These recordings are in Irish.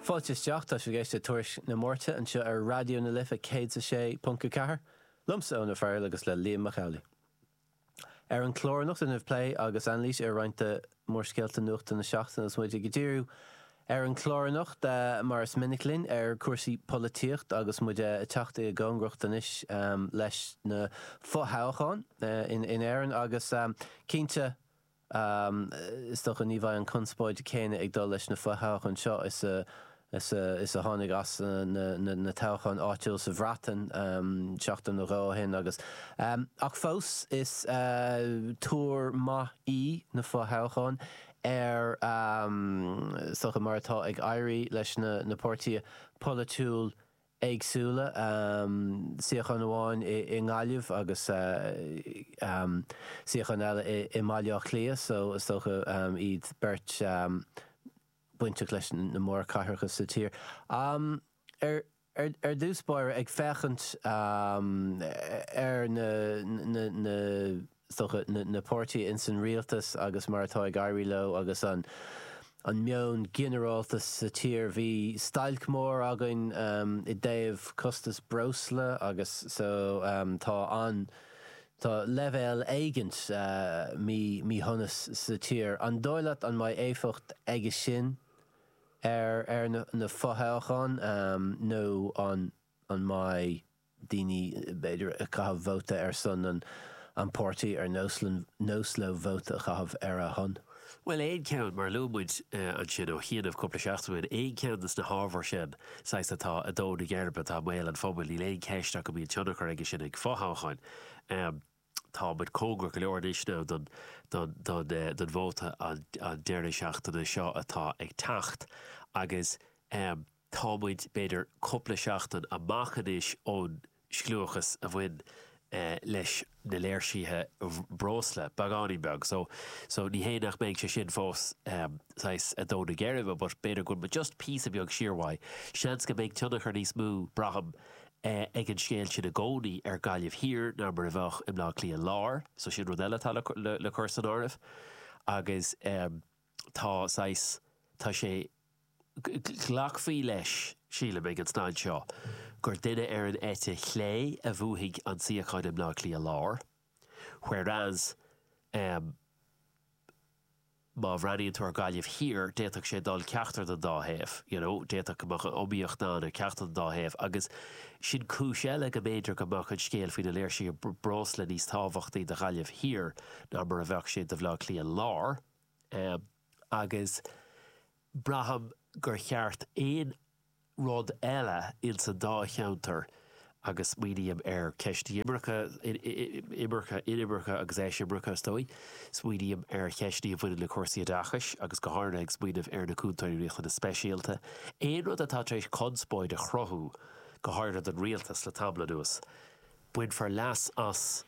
Fáilte isteach, tá sibh ag éisteacht le Tuairisc na Máirte anseo ar Raidió na Life 106.4, liomsa Eoin Ó Fearghail agus le Liam Mac Amhlaigh. Ar an chlár anocht déanfaimid plé agus anailís ar roinnt de mhórscéalta nuachta na seachtaine agus muid ag díriú ar an chlár anocht, mar is minic linn, ar chúrsaí polaitíocht agus muid ag teacht i gcóngaracht anois leis na fo-thoghcháin in Éirinn agus cinnte, Is dócha ní bheidh an conspóid céanna ag dul leis na fo-thoghcháin seo is a tháinig as na toghcháin áitiúil sa Bhreatain seachtain nó dhó ó shin agus ach fós is tuar maith í na fo-thoghcháin ar is dócha mar atá ag éirí leis na páirtithe polaitiúil éagsúla, suíochán amháin i nGaillimh agus suíochán eile i mBaile Átha Cliath so is dócha iad beirt bainteach leis na mórchathracha sa tír. Ar dtús báire, ag féachaint ar na. is dócha na páirtithe ins an Rialtas agus mar atá ag éirí leo agus an meon ginearálta sa tír. Bhí stailc mór againn i dtaobh costas breosla agus so tá an, tá leibhéal éigint míshonais sa tír. An dóigh leat an mbeidh éifeacht aige sin ar na fothoghcháin nó an. An mbeidh daoine b'fhéidir ag caitheamh vóta ar son an páirtí ar nós leo vóta a chaitheamh ar a shon? Bhuel, aon cheann, mar a luaigh muid ansin ó chianaibh cúpla seachtain, aon cheann de sna hábhair sin, saghas atá in ard na geirbe, atá i mbéal an phobail, níl aon cheist ach go mbíonn tionchar aige sin ag fothoghcháin. Tá muid cóngarach go leor anois don vóta an deireadh seachtaine seo atá ag teacht agus tá muid b'fhéidir cúpla seachtain amach anois ón scliúchas a bhain leis na léirsithe breosla beagáinín beag so ní hé nach mbeidh sé sin fós saghas in ard na geirbe but b'fhéidir go bhfuil just píosa beag siar mhaith. Seans go mbeidh tionchar níos mó, braithim, ag an scéal sin i gcónaí ar Gaillimh Thiar ná mar a bheadh i mBleá Cliath Láir. So sin rud eile atá le cur san áireamh. Agus tá saghas, tá sé, glacfaí leis, sílim, ag an staid seo gur duine ar an eite chlé a bhuafaidh an suíochán i mBleá Cliath Láir. Whereas, Má bhreathnaíonn tú ar Gaillimh Thiar, d'fhéadfadh sé dul ceachtar den dá thaobh, you know, d'fhéadfadh go mbeadh iomaíocht ann ar ceachtar den dá thaobh agus sin cúis eile go mb'fhéidir go mbeadh an scéal faoi na léirsithe breosla níos tábhachtaí do Ghaillimh Thiar ná mar a bheadh sé do Bhaile Átha Cliath Láir agus braithim gur cheart aon rud eile ins an dá cheantar agus smaoiním ar ceist imirce, imirce, inimirce agus eisimirce is dóigh, smaoiním ar cheisteanna a bhaineann le cúrsaí oideachais agus go háirithe ag smaoineamh ar na Cúntóirí Riachtanas Speisialta, aon rud atá tar éis conspóid a chruthú go háirithe don Rialtas le tamall anuas, bainfear leas as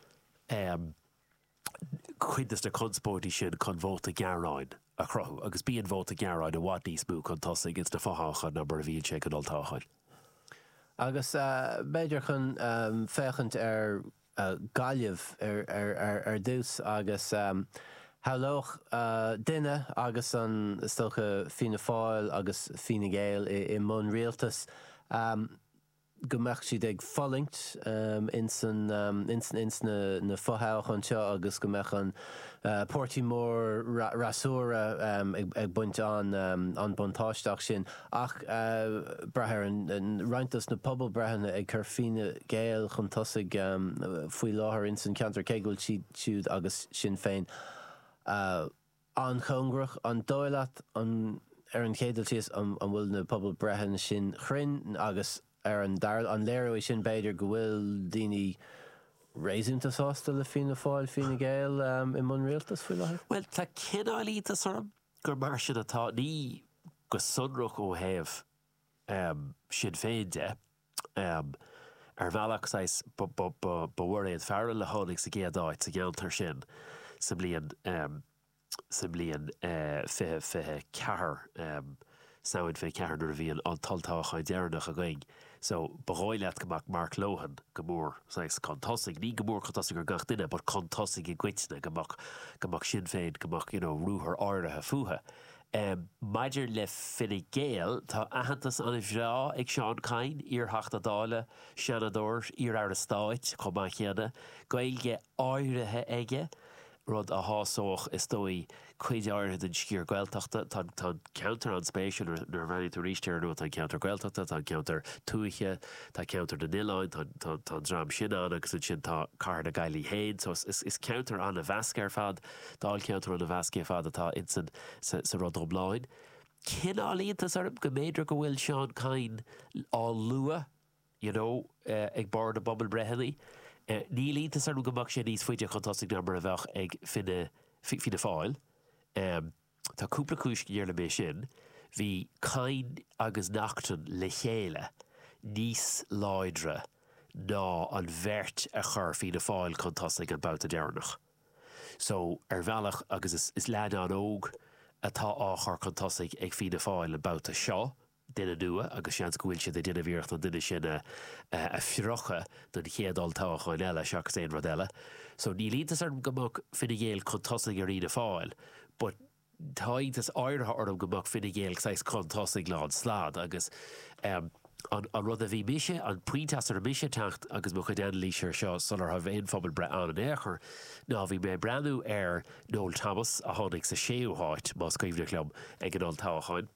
cuid de na conspóidí sin chun vóta gearáin a chruthú agus bíonn vóta gearáin i bhfad níos mó chun tosaigh ins na fothoghcháin ná mar a bhíonn sé ag an olltoghchán. Agus b'fhéidir chun féachaint ar Ghaillimh ar dtús agus shamhlódh duine agus an, is dócha, Fianna Fáil agus Fine Gael i mbun rialtais, go mbeadh siad ag fulaingt ins an, ins na fothoghcháin seo agus go mbeadh an páirtí mór fhreasúra ag baint an, an buntáiste as sin. Ach brath ar an roinnt dos na pobalbhreitheanna ag cur Fine Gael chun tosaigh faoi láthair ins an cheantar cé go bhfuil siad siúd agus Sinn Féin an-chóngarach. An dóigh leat, ar an chéad dul síos, an bhfuil na pobalbhreitheanna sin cruinn agus ar an dara, an léireoidh sin b'fhéidir go bhfuil daoine réasúnta sásta le Fianna Fáil, Fine Gael i mbun rialtais faoi láthair? Bhuel, tá cineál iontas orm gur mar sin atá. Ní go sonrach ó thaobh Sinn Féin de. Ar bhealach, saghas, ba Mhairéad Farrell a tháinig sa gcéad áit sa gceantar sin sa mbliain, sa mbliain fiche, fiche ceathair, Samhain fiche ceathair nuair a bhí an t-olltoghchán deireanach againn. So, ba dhóigh leat go mbeadh Mark Lohan go mór, saghas, chun tosaigh, ní go mór chun tosaigh ar gach duine but chun tosaigh i gcoitinne, go mbeadh, go mbeadh Sinn Féin, go mbeadh, you know, ruathar áirithe fútha. Em, maidir le Fine Gael, tá aitheantas an-bhreá ag Seán Kyne, iar-Theachta Dála, Seanadóir, iar-Aire Stáit chomh maith céanna, Gaeilge áirithe aige, rud a shásódh, is dóigh, cuid áirithe den sciar Gaeltachta. Tá an, tá an ceantar an-spéisiúil nuair, nuair a bhreathnaíonn tú arís air, nó tá an ceantar Gaeltachta, tá an ceantar tuaithe, tá ceantar na n-oileáin, tá an, tá, tá an dream sin ann agus ansin tá cathair na Gaillimhe féin. So is, is, is ceantar an-mheasctha ar fad. Dáilcheantar ann a mheas cé fad atá ins an sa rud iomlán. Cineál iontas orm go mb'fhéidir go bhfuil Seán Kyne á lua you know ag barr na bpobalbreitheanna. Níl iontas orm go mbeadh sé níos faide chun tosaigh ná mar a bheadh Fine Fianna Fáil. Tá cúpla cúis go ndeirlim é sin. Bhí Kyne agus Naughton le chéile níos láidre ná an bheirt a chur Fianna Fáil chun tosaigh an babhta deireanach. So, ar bhealach, agus is is leaid an-óg atá á chur chun tosaigh ag Fianna Fáil an babhta seo, duine nua, agus seans go bhfuil siad ag déanamh iarracht an duine sin a phiocadh don chéad olltoghchán eile seachas aon rud eile. So, níl iontas orm go mbeadh Fine Gael chun tosaigh ar Fhianna Fáil but, Tá iontas áirithe orm go mbeadh Fine Gael saghas chun tosaigh lán stad agus an rud a bhí mise, an pointe as a raibh mise ag teacht i mo chuid anailíse ar seo sula raibh aon phobalbhreith ann in aon chor ná bhí mé ag breathnú ar Noel Thomas a tháinig sa séú háit, más cuimhneach liom, ag an olltoghchán.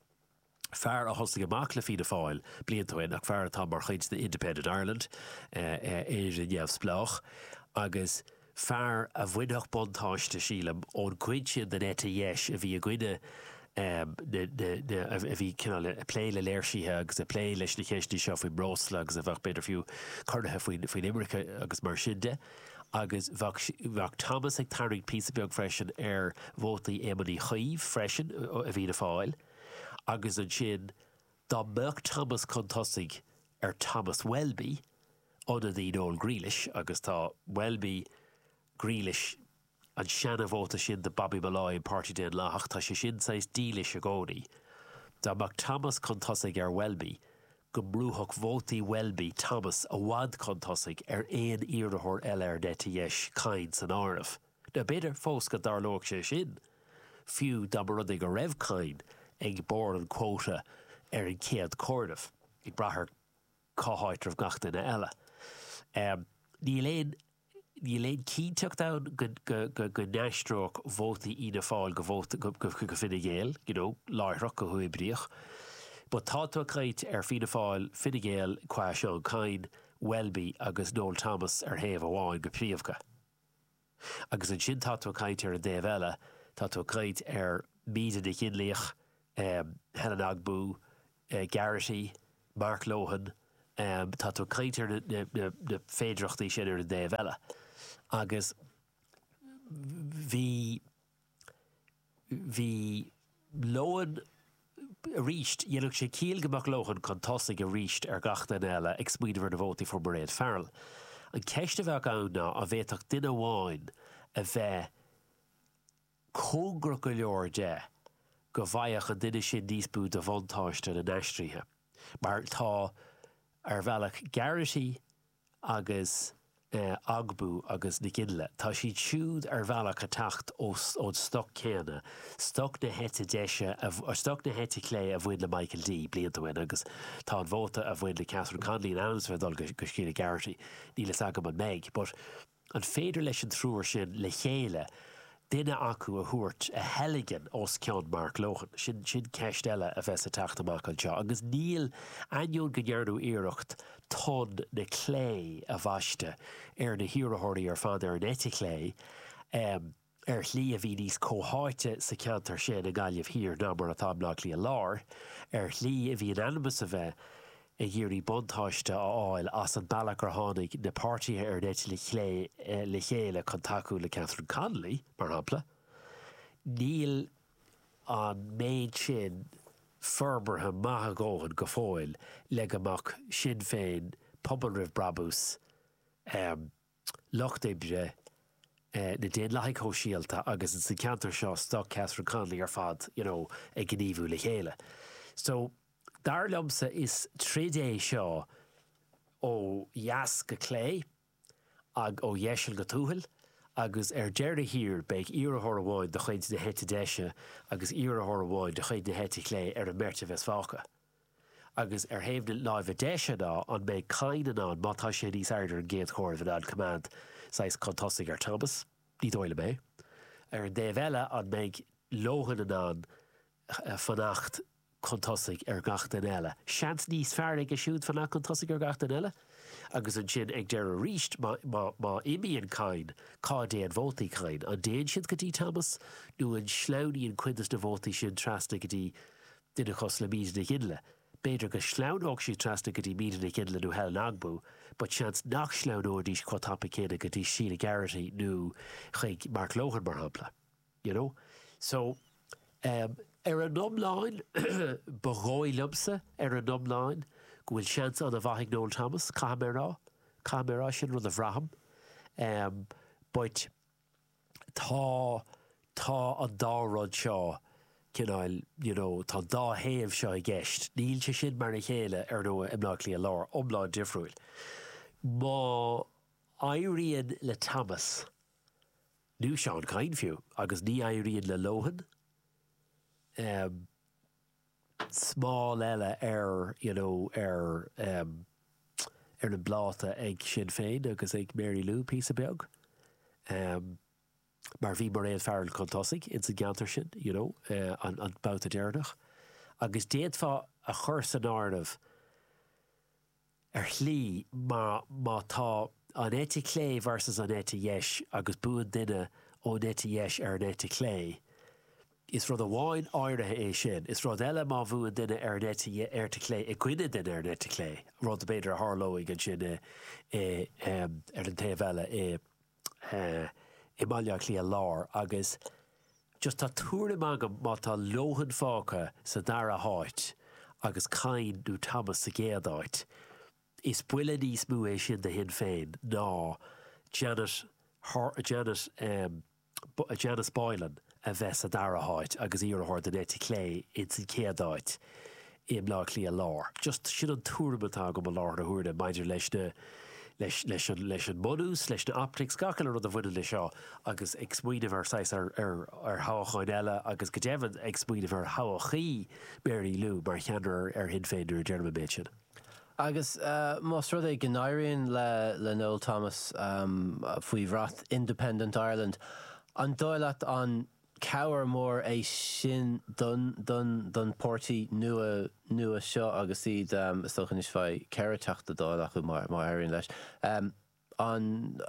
fear a thosaigh amach le Fianna Fáil blianta ó shin ach fear atá mar chuid de Independent Ireland, Éire Neamhspleách, agus fear a bhainfeadh buntáiste, sílim, ón gcuid sin den eite dheis a bhí i gcoinne na, a bhí cineál ag plé le léirsithe agus ag plé leis na ceisteanna seo faoin mbreosla agus a bheadh b'fhéidir fiú corraithe faoin imirce agus mar sin de. Agus bheadh Thomas ag tarraingt píosa beag freisin ar vótaí Éamoin Uí Chuív freisin i bhFianna Fáil. agus ansin dá mbeadh Thomas chun tosaigh ar Thomas Welby, ionadaí Noel Grealish, agus tá Welby, Grealish, an seana vóta sin de Bobby Molloy an Páirtí Daonlathach, tá sé sin saghas dílis i gcónaí, dá mbeadh Thomas chun tosaigh ar Welby go mbrúfadh vótaí Welby Thomas i bhfad chun tosaigh ar aon iarrathóir eile ar an eite dheis, Kyne san áireamh. Nó b'fhéidir fós go dtarlóidh sé sin, fiú dá mba rud é go raibh Kyne ag barr an chuóta ar an chéad comhaireamh, ag brath ar cá háit a raibh gach duine eile. Níl aon níl aon cinnteacht ann go n-aistreodh vótaí Fhianna Fáil go vótaí go Fine Gael, you know, láithreach, go huathoibríoch. But tá tú ag caint ar Fianna Fáil, Fine Gael qua Seán Kyne, Welby agus Noel Thomas ar thaobh amháin go príomha. Agus ansin tá tú ag caint ar an dtaobh eile, tá tú ag caint ar Míde Nic Fhionnlaoich, Helen Ogbu, Garrity, Mark Lohan, tá tú ag caint ar na féidireachtaí sin ar an dtaobh eile. Agus bhí. bhí Lohan arís, dhéanfadh sé ciall go mbeadh Lohan chun tosaigh arís ar gach duine eile ag smaoineamh ar na vótaí a fuair Mairéad Farrell. An cheist a bheadh ann ná an bhféadfadh duine amháin a bheith cóngarach go leor de go bhfaigheadh an duine sin níos mó de bhuntáiste na n-aistrithe mar tá ar bhealach Garrity, agus Ogbu agus Nic Fhionnlaoich, tá siad siúd ar bhealach ag teacht ón stoc céanna, stoc na heite deise, stoc na heite clé a bhain le Michael D. blianta ó shin agus tá an vóta a bhain le Catherine Connolly in ainm is a bheith ag dul go Sheila Garrity. Níl fhios agam an mbeidh but. An féidir leis an triúr sin le chéile duine acu a thabhairt a theilgean os cionn Mark Lohan? Sin sin ceist eile a bheas ag teacht amach anseo. Agus níl, ainneoin go ndearnadh iarracht tonn na clé a bhaisteadh ar na hiarrathóirí ar fad ar an eite chlé, eh, Ar shlí a bhí níos comhtháite sa cheantar sin i nGaillimh Thiar ná mar atá i mBleá Cliath Láir. Ar shlí a bhí in ainm is a bheith ag iarraidh buntáiste a fháil as an bealach ar tháinig na páirtithe ar an eite chlé le chéile chun tacú le Catherine Connolly, mar shampla, níl an méid sin forbartha maith a dhóthain go fóill le go mbeadh Sinn Féin, Pobal Roimh Brabús, Lucht Oibre, na Daonlathaigh Shóisialta agus ins an ceantar seo stoc Catherine Connolly ar fad, you know, ag gníomhú le chéile. So, dar liomsa is troid é seo ó dheas go clé agh ó dheiseal go tuathail agus ar deireadh thiar beidh iarrathóir amháin de chuid na heite deise agus iarrathóir amháin de chuid na heite clé ar an mbeirt a bheas fágtha. Agus ar thaobh na láimhe deise ná, an mbeidh Kyne in ann, má tá sé níos airde ar an gcéad chomhaireamh, in ann coimeád saghas chun tosaigh ar Thomas? Ní dóigh liom é. Ar an dtaobh eile, an mbeidh Lohan in ann fanacht chun tosaigh ar gach duine eile? Seans níos fearr aige siúd fanacht chun tosaigh ar gach duine eile. Agus ansin ag deireadh arís, má imíonn Kyne, cá dtéann vótaí Kyne? An dtéann siad go dtí Thomas nó an sleamhnaíonn cuid des na vótaí sin trasna go dtí duine cosúil le Míde Nic Fhionnlaoich. B'fhéidir go sleamhnódh siad trasna go dtí Míde Nic Fhionnlaoich nó Helen Ogbu, but seans nach sleamhnóidís chomh tapa céanna go dtí Sheila Garrity nó chuig Mark Lohan mar shampla. You know? So, um, ar an iomlán, ba dhóigh liomsa, ar an iomlán, go bhfuil seans an-mhaith ag Noel Thomas, caithfidh mé a rá. Caithfidh mé a rá, sin rud a bhraithim. Um, but, tá, tá an dá rud seo, cineáil, you know, tá an dá thaobh seo i gceist. Níl sé sin mar a chéile, ar ndóigh, i mBleá Cliath Láir, iomlán difriúil. Má éiríonn le Thomas, nó Seán Kyne fiú, agus ní éiríonn le Lohan, eh, smál eile ar you know ar em ar an bpláta ag Sinn Féin agus ag Mary Lou píosa beag em mar bhí Mairéad Farrell chun tosaigh ins an gceantar sin you know eh an babhta deireanach agus d'fhéadfá a chur san áireamh ar shlí, mar má tá an eite chlé versus an eite dheis agus buann duine ón eite dheis ar an eite chlé, is rud amháin áirithe é sin. Is rud eile má bhuann duine ar an eite dheis, eite chlé i gcoinne duine ar an eite chlé, rud b'fhéidir a tharlóidh ansin i ar an taobh eile i. eh i mBaile Átha Cliath Lár agus just tá tuairim agam má tá Lohan fágtha sa dara háit agus Kyne nó Thomas sa gcéad áit, is buille níos mó é sin do Shinn Féin ná Janet Har, Janet em, Janice Boylan. a bheith sa dara háit agus iarrthóir den eite chlé ins an chéad áit i mBleá Cliath Lár. Just sin an tuairim atá agam i láthair na huaire maidir leis na, leis, leis an, leis an mbunús, leis na optics, gach uile rud a bhaineann leis seo agus ag smaoineamh ar saghas, ar, ar, ar thoghacháin eile agus go deimhin ag smaoineamh ar thodhchaí Mary Lou mar cheannaire ar Shinn Féin nuair a deirim an méid sin. Agus más rud é go n-éiríonn le Noel Thomas, faoi bhrat Independent Ireland, an dóigh leat an cabhair mór é sin don don páirtí nua nua seo agus iad, is dócha anois bheidh ceithre Teachta Dála acu má éiríonn leis. An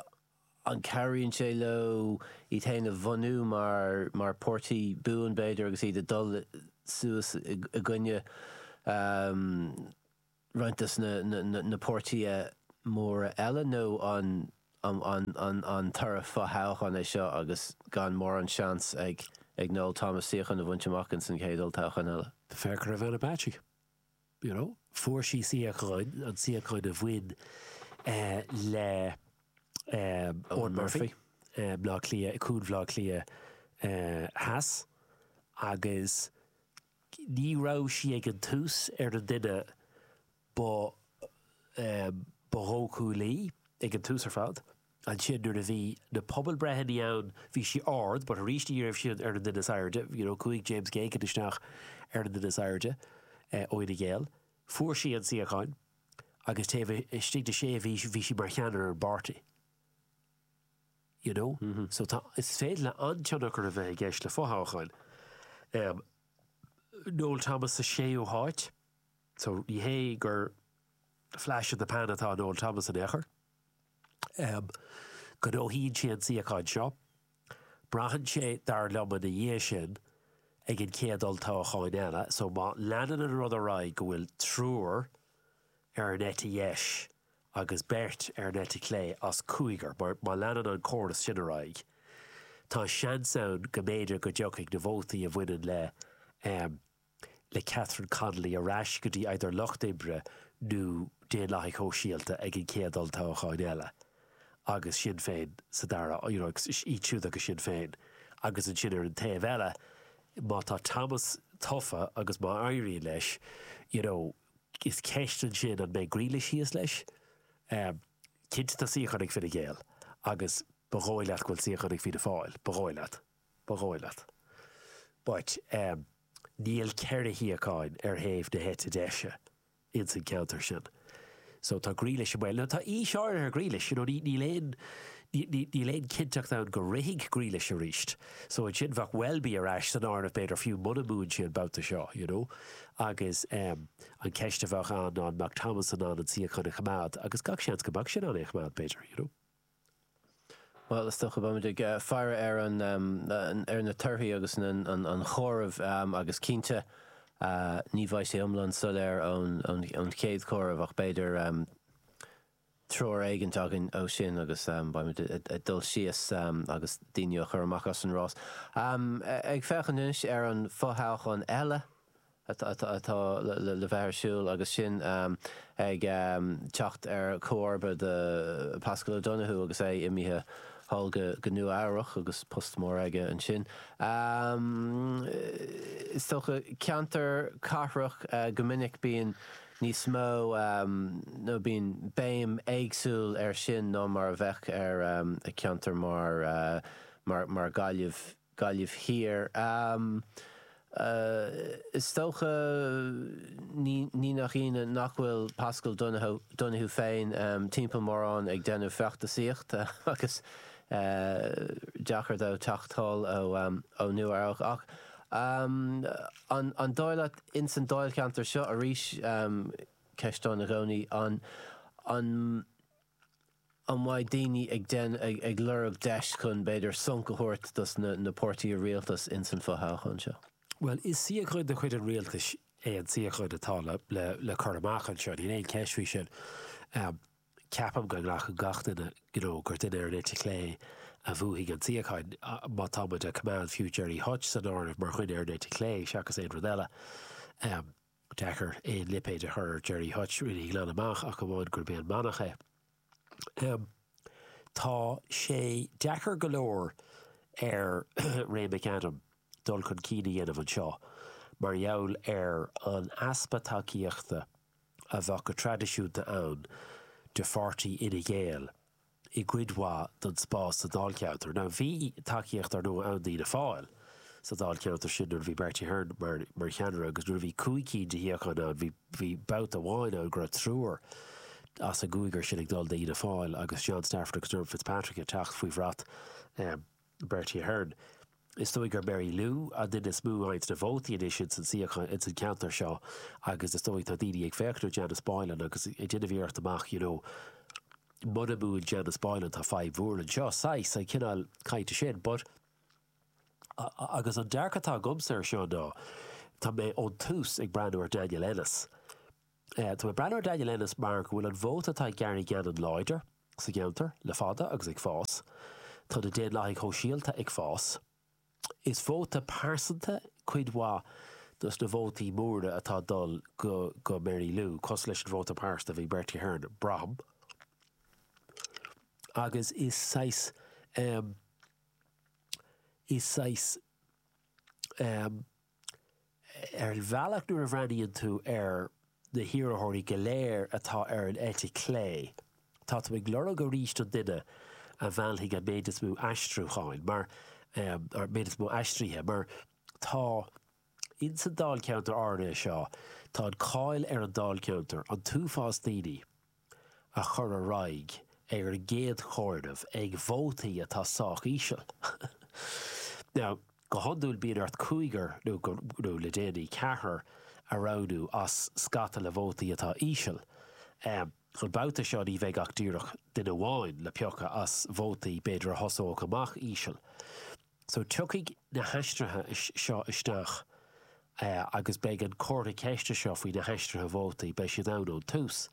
an cabhraíonn sé leo iad féin a bhunú mar mar páirtí buan b'fhéidir agus iad ag dul suas i gcoinne roinnt des na na páirtí móra eile nó an an an toradh fothoghcháin é seo agus gan mórán seans ag ag Noel Thomas suíochán a bhaint amach ins an chéad olltoghchán eile? Féach ar Ivana Bacik. you know, fuair sí suíochán, an suíochán a bhain eh le eh Eoghan Murphy i mBleá Cliath, Cuan Bhleá Cliath eh Theas agus ní raibh sí ag an tús ar an duine ba eh ba dhóchúlaí ag an tús ar fad. Ansin nuair a bhí na pobalbreitheanna ann bhí sí ard but arís ní raibh sí ar an duine is airde you know chuaigh James Geoghegan isteach ar an duine is airde ó Fhine Gael. Fuair sí an suíocháin agus taobh istigh de sé mhí bhí sí mar cheannaire ar an bpáirtí you know so tá is féidir le an-tionchar a bheith i gceist le fothoghcháin. Um Noel Thomas sa séú háit so ní hé gur flash in the pan atá in Noel Thomas in aon chor. ghnóthaíonn sé an suíochán seo. Braitheann sé, dar liom, ina dhiaidh sin, ag an chéad olltoghchán eile. So, má leanann an rud ar aghaidh go bhfuil triúr ar an eite dheis agus beirt ar an eite chlé as cúigear, má leanann an córas sin ar aghaidh, tá seans ann go mb'fhéidir go dtiocfaidh na vótaí a bhaineann le, le Catherine Connolly ar ais go dtí either Lucht Oibre nó Daonlathaigh Shóisialta ag an chéad olltoghchán eile agus Sinn Féin sa dara, you know, agus iad siúd agus Sinn Féin agus ansin ar an taobh eile má tá Thomas tofa agus má éiríonn leis, you know, is ceist ansin an mbeidh Grealish thíos leis? Ehm, cinnte tá suíochán ag Fine Gael agus ba dhóigh leat go bhfuil suíochán ag Fianna Fáil, ba dhóigh leat. Ba dhóigh leat. But ehm, níl ceithre shuíocháin ar thaobh na heite deise ins an ceantar sin. So tá Grealish i mbaol. Now tá aois áirithe ar Grealish, you know, ní, níl aon, ní, níl aon cinnteacht ann go rithfidh Grealish arís. So ansin bheadh Welby ar ais san áireamh b'fhéidir fiú muna mbuann sí an babhta seo, you know. Agus ehm, an ceist a bheadh ann ná an mbeadh Thomas in ann an suíochán a choimeád agus gach seans go mbeadh sé in ann é a choimeád b'fhéidir, you know. Bhuel, is dócha go mbeimid ag faire ar na ar na torthaí agus an comhaireamh agus cinnte ní bheidh sé iomlán soiléir ón chéad chomhaireamh ach b'fhéidir treoir éigint againn ó sin agus beimid ag dul síos agus daoine á chur amach as an rás. Ag féachaint anois ar an fothoghchán eile, atá le bheith ar siúl agus sinn ag teacht ar chomharba do Paschal Donohoe agus é imithe sall go Nua-Eabhrac agus post mór aige ansin, is dócha. Ceantar cathrach go minic bíonn níos mó nó bíonn béim éagsúil ar sin ná mar a bheadh ar cheantar mar mar Ghaillimh. Gaillimh Thiar. Is dócha, ní nach ionadh, nach bhfuil Paschal Donohoe féin timpeall mórán ag déanamh feachtasaíocht agus deacair dó teacht anall ó Nua-Eabhrac. Ach an dóigh leat, ins an dáilcheantar seo, arís ceist ann i gcónaí, an. An mbeidh daoine ag déa, ag, ag lorg deis chun, b'fhéidir, sonc a thabhairt dos na, na páirtithe rialtais ins an fo-thoghchán seo? Bhuel, is suíochán de chuid an rialtais é an suíochán atá le, le, le cur amach anseo. Níl aon cheist faoi sin. Ceapaim go nglacann gach duine, you know, gur duine ar an eite chlé a bhuafaidh an suíochán, má tá muid a' coimeád, fiú Gerry Hutch san áireamh, mar dhuine ar an eite chlé, seachas aon rud eile. deacair aon lipéad a chur ar Gerry Hutch, really, glan amach ach amháin gurb é an manach é. Tá sé deacair go leor ar Ray McAdam dul chun cinn a dhéanamh anseo mar gheall ar an easpa tacaíochta a bheadh go traidisiúnta ann de pháirtí Fhine Gael. i gcuid mhaith don spás sa Dáilcheantar. Now bhí tacaíocht ár ndóigh ann d'Fhianna Fáil sa Dáilcheantar sin nuair a bhí Bertie Ahern mar mar cheannaire agus nuair a bhí cúig cinn de shuíocháin ann bhí bhí babhta amháin ann go raibh triúr as an gcúigear sin ag dul d'Fhianna Fáil agus John Stafford agus Dermot Fitzpatrick ag teacht faoi bhrat eh Bertie Ahern. Is dóigh gur Mary Lou an duine is mó a fhaigheanns na vótaí anois ins an suíochán ins an ceantar seo agus is dóigh tá daoine ag féachaint ar Janice Boylan agus ag déanamh iarracht a mhaíomh you know muna mbuann Janice Boylan tá fadhb mhór anseo, saghas, an cineál cainte sin but agus an dearcadh atá agamsa ar seo ná tá mé ón tús ag breathnú ar Daniel Ennis. Tá mé ag breathnú ar Daniel Ennis mar go bhfuil an vóta atá ag Gary Gannon láidir sa gceantar le fada agus ag fás. Tá na Daonlathaigh Shóisialta ag fás. Is vóta pearsanta cuid mhaith dos na vótaí móra atá ag dul go Mary Lou, cosúil leis an vóta pearsanta a bhí ag Bertie Ahern, braithim. Agus is saghas, is saghas. Ar bhealach nuair a bhreathnaíonn tú ar na hiarrthóirí go léir atá ar an eite clé tá tú ag lorg arís an duine a mheallfaidh an méid is mó aistriúcháin mar, an méid is mó aistrithe mar tá ins an dáilcheantar áirithe seo, tá an cáil ar an dáilcheantar, an t-uafás daoine. a chur ar aghaidh ar an gcéad chomhaireamh ag vótaí atá sách íseal. Now, go hiondúil bíonn ort cúigear nó, nó le déanaí, ceathrar a roghnú as scata le vótaí atá íseal. An babhta seo ní bheidh ach díreach duine amháin le piocadh as vótaí b'fhéidir a thosódh amach íseal. So tiocfaidh na haistrithe seo isteach agus beidh an comhartha ceiste seo faoi na haistrithe vótaí, beidh siad ann ón tús.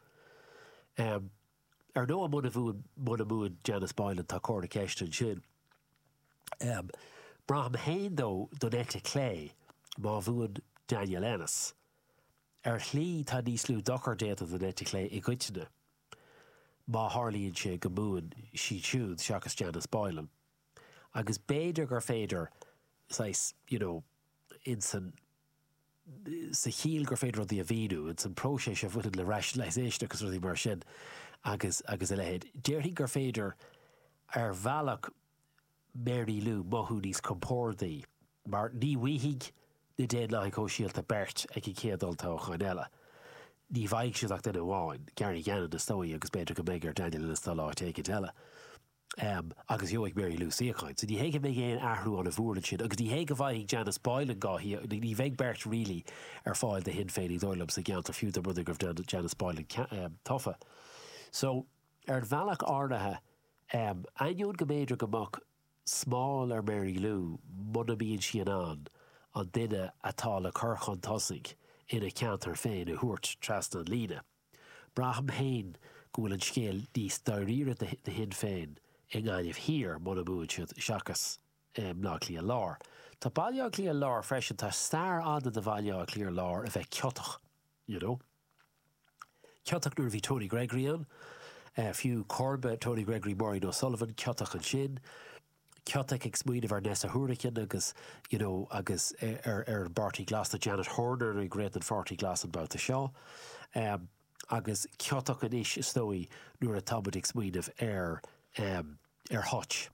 Ar ndóigh muna mbu, muna mbuann Janice Boylan tá comhartha ceiste ansin. Braithim fhéin, dó, don eite chlé má bhuann Daniel Ennis. Ar shlí tá níos lú dochar déanta don eite chlé i gcoitinne má tharlaíonn sé go mbuann siad siúd seachas Janice Boylan. Agus b'fhéidir gur féidir, saghas, you know, ins an, sa chiall gur féidir rudaí a mhíniú, ins an próiseas a bhaineann le rationalisation agus rudaí mar sin agus, agus a leithéid. Déarfainn gur féidir ar bhealach Mary Lou mothú níos compórdaí mar ní bhfaighidh na Daonlathaigh Shóisialta beirt ag an gcéad olltoghchán eile. Ní bhfaighidh siad ach duine amháin, Gary Gannon is dóigh agus b'fhéidir go mbeidh ar Daniel Ennis dul áit éigint eile. Em, agus gheobhaidh Mary Lou suíochán. So ní hé go mbeidh aon athrú ann i bhfíor ansin agus ní hé go bhfaighidh Janice Boylan gá thí, ní bheidh beirt really ar fáil do Shinn Féin is dóigh liom sa gceantar fiú dá mbronnadh go raibh Jan, Janice Boylan cea, em, tofa. So, ar bhealach áirithe, em, ainneoin go mb'fhéidir go mbeadh smál ar Mary Lou muna mbíonn sí in ann an duine atá le cur chun tosaigh ina ceantar féin a thabhairt trasna an líne, Braithim féin go bhfuil an scéal níos dáiríre do Shinn Féin i nGaillimh Thiar, mura mbuann siad, seachas i mBaile Átha Cliath Lár. Tá Baile Átha Cliath Lár freisin, tá stair fhada do Bhaile Átha Cliath Lár a bheith ciotach, you know. Ciotach nuair a bhí Tony Gregory ann, fiú comharba Tony Gregory, Maureen O'Sullivan, ciotach ansin. Ciotach ag smaoineamh ar Neasa Hourigan agus you know agus ar ar an bPáirtí Glas tá Janet Horner ag rith don Pháirtí Glas an babhta seo em agus ciotach anois is dóigh nuair atá muid ag smaoineamh ar em ar Hutch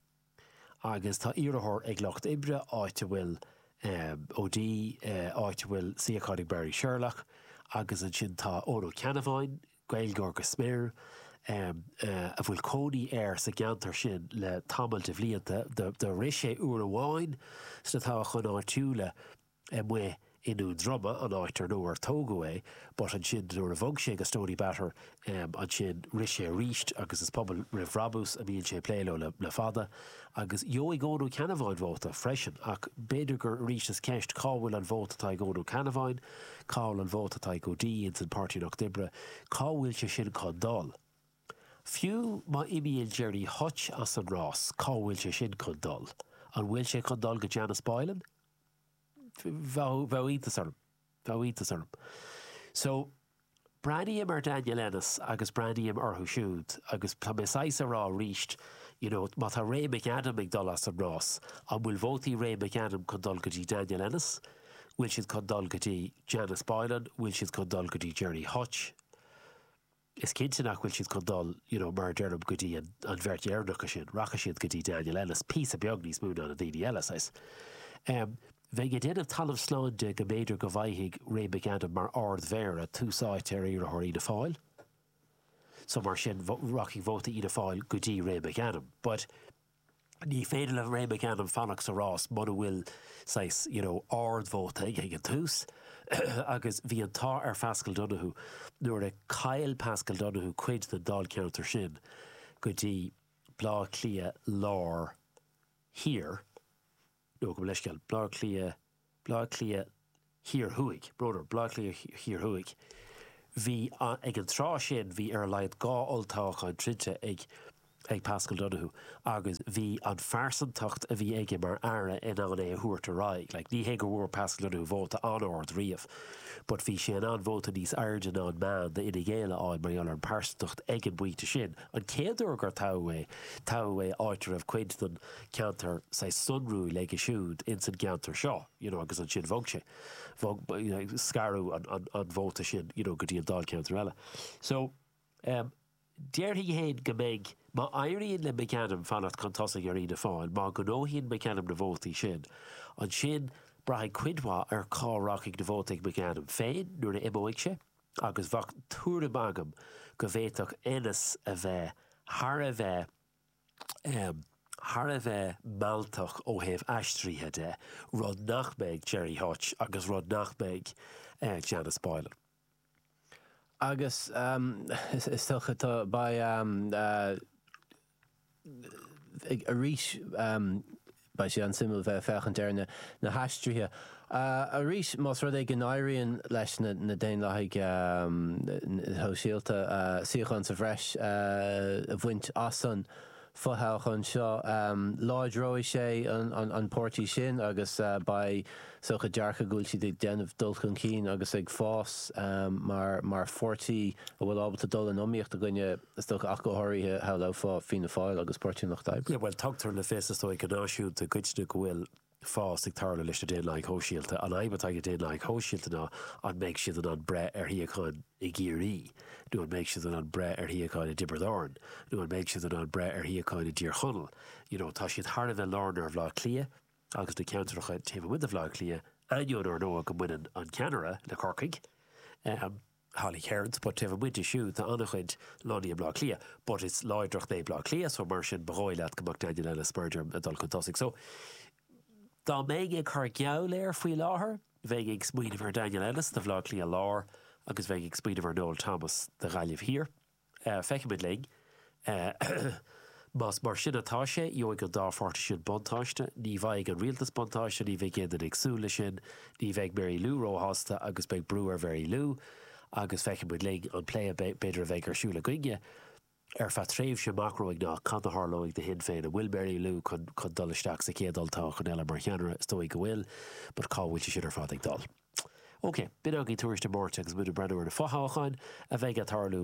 agus tá iarrthóir ag Lucht Oibre áit a bhfuil em O'Dea eh áit a bhfuil suíochán ag Marie Sherlock agus ansin tá Eoin Ó Ceannabháin Gaeilgeoir go smior, a bhfuil cónaí air sa gceantar sin le tamall de bhlianta. Do rith sé uair amháin sna toghcháin áitiúla amuigh i nDún Droma, an áit ar ar tógadh é, but ansin nuair a bhog sé go Stoneybatter ansin rith sé arís agus is Pobal Roimh Bhrabús a mbíonn sé ag plé leo le fada. Agus gheobhaidh Eoin Ó Ceannabháin vóta freisin ach b'fhéidir gur arís is ceist cá bhfuil an vóta atá ag Eoin Ó Ceannabháin? Cá bhfuil an vóta atá ag O'Dea ins an Páirtí Lucht Oibre? Cá bhfuil sé sin chun dul? Fiú má imíonn Gerry Hutch as an rás, cá bhfuil sé sin chun dul? An bhfuil sé chun dul go Janice Boylan? Bheadh iontas orm. Bheadh iontas orm. So, Breathnaím ar Daniel Ennis agus breathnaím orthu siúd agus tá mé saghas a rá arís, you know, má tá Ray McAdam ag dul as an rás, an bhfuil vótaí Ray McAdam chun dul go dtí Daniel Ennis? Bhfuil siad chun dul go dtí Janice Boylan? Bhfuil siad chun dul go dtí Gerry Hutch? Is cinnte nach bhfuil siad chun dul, you know, mar a deirim, go dtí an bheirt dheireanacha sin. Rachaidh siad go dtí Daniel Ennis píosa beag níos mó ná na daoine eile, saghas. Um. Bheinn ag déanamh talamh slán de go mb'fhéidir go bhfaighfidh Ray McAdam mar Ard-Mhéara tús áite ar iarrthóir Fhianna Fáil so mar sin rachaidh vóta Fhianna Fáil go dtí Ray McAdam but ní féidir le Ray McAdam fanacht sa rás muna bhfuil saghas you know ardvóta aige ag an tús agus bhí an t-ádh ar Phaschal Donohoe nuair a chaill Paschal Donohoe cuid den Dáilcheantar sin go dtí Blá Cliath Lár Thiar. Nó gabh mo leithscéal, Blá Cliath, Blá Cliath Thiar Thuaidh, Broder, Blá Cliath Thiar Thuaidh. Bhí, ag an tráth sin, bhí ar a laghad dhá olltoghchán troidte ag ag Paschal Donohoe agus bhí an phearsantacht a bhí aige mar Aire in ann é a thabhairt ar aghaidh. Like, ní hé go bhfuair Paschal Donohoe vóta an-ard riamh but bhí sé in ann vóta níos airde ná an meán d'Fhine Gael a fháil mar gheall ar an pearsantacht ag an bpointe sin. An chéad uair gur toghadh é, toghadh é áit a raibh cuid den cheantar saghas sonrúil aige siúd ins an gceantar seo you know agus ansin bhog sé, bhog, scaradh an, an, an vóta sin you know go dtí an Dáilcheantar eile. So, em, déarfainn fhéin go mbeidh, má éiríonn le McAdam fanacht chun tosaigh ar Fhianna Fáil, má ghnóthaíonn McAdam na vótaí sin, ansin braithfidh cuid mhaith ar cá rachaidh na vótaí ag McAdam féin nuair a imeoidh sé agus bheadh tuairim agam go bhféadfadh Ennis a bheith thar a bheith Em, thar a bheith mealltach ó thaobh aistrithe de, rud nach mbeidh Gerry Hutch agus rud nach mbeidh Janice Boylan. Agus em, is dócha tá, beidh em, em, arís em, Beidh sé an-suimiúil bheith ag féachaint ar na haistrithe arís más rud é go n-éiríonn leis na Daonlathaigh Shóisialta suíochán sa bhreis a bhaint as an fothoghchán seo. Láidreoidh sé an páirtí sin agus beidh sórt dearcadh go bhfuil siad ag déanamh dul chun cinn agus ag fás mar pháirtí a bhfuil ábalta dul in iomaíocht i gcoinne is dócha, ach go háirithe, shamhlófá, Fianna Fáil agus Páirtí an Lucht Oibre. Bhuel, tugtar le fios, is dóigh, go náisiúnta i gcoitinne go bhfuil fás ag tarlú leis na Daonlathaigh Shóisialta. An fhadhb atá ag na Daonlathaigh Shóisialta ná an mbeidh siad in ann breith ar shuíocháin i gCiarraí? Nó an mbeidh siad in ann breith ar shuíocháin i dTiobraid Árann? Nó an mbeidh siad in ann breith ar shuíocháin i dTír Chonaill? You know, tá siad thar a bheith láraithe ar Bhaile Átha Cliath agus na ceantracha taobh amuigh de Bhaile Átha Cliath, ainneoin, ar ndóigh, go mbaineann an ceannaire le Corcaigh. Holly Cairns, But taobh amuigh de siúd tá an-chuid lonnaithe i mBleá Cliath. But is láidreacht é Bleá Cliath so mar sin ba dhóigh leat go mbeadh Daniel Ennis b'fhéidir ag dul chun tosaigh. So dá mbeinn ag cur geall air faoi láthair bheinn ag smaoineamh ar Daniel Ennis do Bhleá Cliath Láir agus bheinn ag smaoineamh ar Noel Thomas do Ghaillimh Thiar. Feicfimid linn. Más mar sin atá sé, gheobhaidh an dá pháirtí sin buntáiste. Ní bhfaighidh an Rialtas buntáiste, ní bheidh aon duine ag súil leis sin. Ní bheidh Mary Lou róshásta agus beidh brú ar Mhary Lou. Agus feicfimid linn an plé a b'fhéidir a bheidh ar siúl againne ar feadh tréimhse amach romhainn ná cad a tharlóidh do Shinn Féin. An bhfuil Mary Lou chun dul isteach sa chéad olltoghchán eile mar cheannaire? Is dóigh go bhfuil, but cá bhfuil sé sin ar fad ag dul? OK, b'in againn Tuairisc na Máirte agus muid ag breathnú ar na fo-thoghcháin a bheidh ag tarlú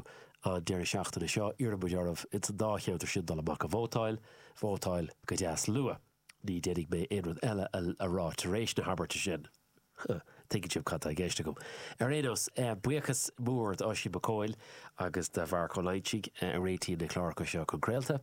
an deireadh seachtaine seo. Iarrann muid oraibh ins an dá cheantar sin dul amach a vótáil. Vótáil go deas luath. Ní déanfaidh mé aon rud eile a rá tar éis na habairte sin. Tuigeann sibh cad tá i gceist agam. Ar aon nós, buíochas mór d'Oisín Mac Cumhaill agus do Mharc Ó Loingsigh a réitíonn na cláracha seo chun craolta.